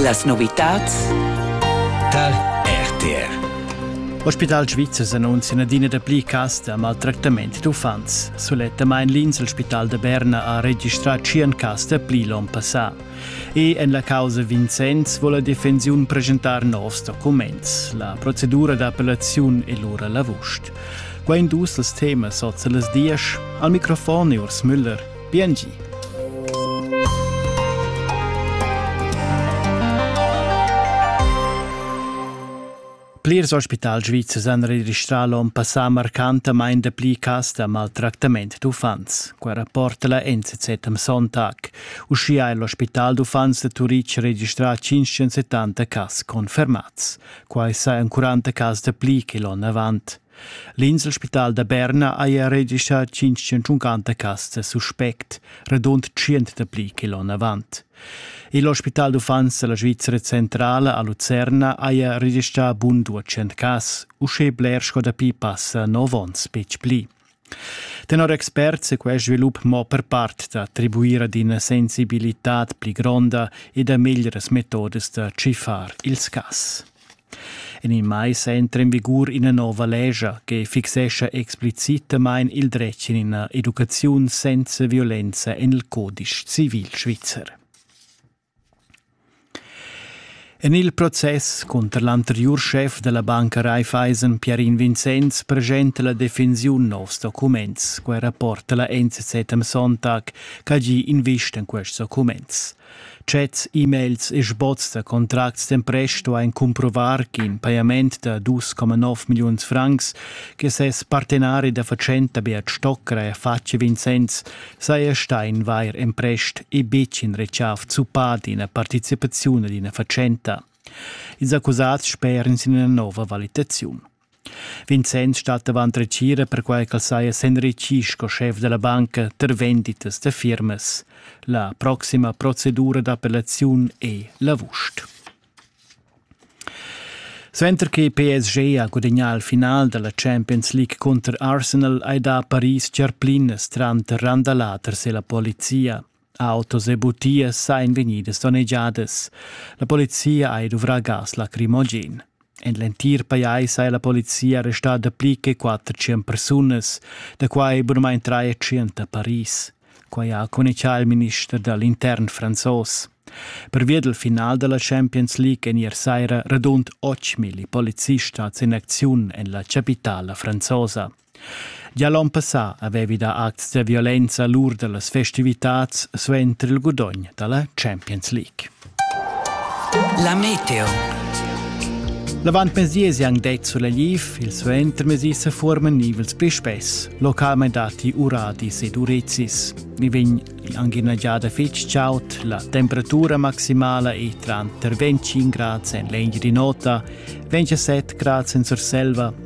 Las novitads tar RTR. Ospital Svizzer annunzia adina da pli cas da maltractament d'uffants. Sulettamain l'Inselspital da Berna ha registrà 100 cas da pli l'onn passà. E en la causa Vincenz vuole la defensiun presentar novs documents. La procedura d'appellaziun è lura l'avust. Quai dus els temas oz las dies. Al microfon è Urs Müller. Biengi. Plirs ospital svizzers han registrà l'onn passà marcantamain dapli cas da maltractament d'uffants. Quai rapporta la NZZ am Sonntag. Uschia è l'ospital d'uffants da Turitg registrà 570 cas confermads. Quai sa en 40 cas dapli che l'onn avant. L'inselspital da Berna haja regischà tschintschenta castas suspect, radund tschient dapli che l'onn avant. Il ospital d'uffants da la Svizra centrala a Lucerna haja registrà bun duecent cas, uschè bler sco dapi passa nov onns betg pli. Tenor experts è quest svilup mo per part da attribuir ad ina sensibilitad pli gronda e da meglieras metodas da tschiffar ils cas. En il mais entra en vigur ina nova lescha che fixescha explicitamain il dretg en ina educaziun senza violenza en il codice civil svizzer. En il process cunter l'anteriur schef della banca Raiffeisen Pierin Vincenz presenta la defensiun novs documents, quei rapporta la NZZ am Sonntag, che gi invista in quests documents. Chats, e-mails e sboz da contracts d'empresto ein cumprovar ch'in pajament da 2,9 milliuns francs che ses partenari da fatschenta Beat Stockra ha fatg a Vincenz saja stà in vair emprest e betg in retschaf zuppà d'ina participaziun ad ina fatschenta. Ils accusats speran sin ina nova valitaziun. Vincenz stat avant retgira perquai ch'el saja s'enritgì sco schef da la banca tar venditas da firmas. La proxima procedura d'appellaziun è l'avust. Suenter che PSG ha gudagnà il final da la Champions League cunter Arsenal hai dà Paris tgerplinas tranter Randalà e la polizia. Autos e butias sain vegnidas donnegiadas. La polizia ha duvrà gas lacrimogen. En l'entir pajais ha la polizia arrestà dapli che 400 persunas, da quai bunamain 300 a Paris. Quai ha communicà il minister da l'intern franzos. Pervia del final della Champions League en ier saira radund 8.000 polizistas in acziun en la capitala franzosa. Gia l'onn passà avevi dà acts da violenza lur da las festivitads suenter il gudogn da la Champions League. La meteo. L'avantmezdi è anc det sulla Liv, il suentermezdi se forman nivels pli spess, localment dati uradis ed urezis. Mi vegn anche una giada fitg ciaut, la temperatura maximala è tra 25 gradi en l'eglia di nota, 27 gradi in Surselva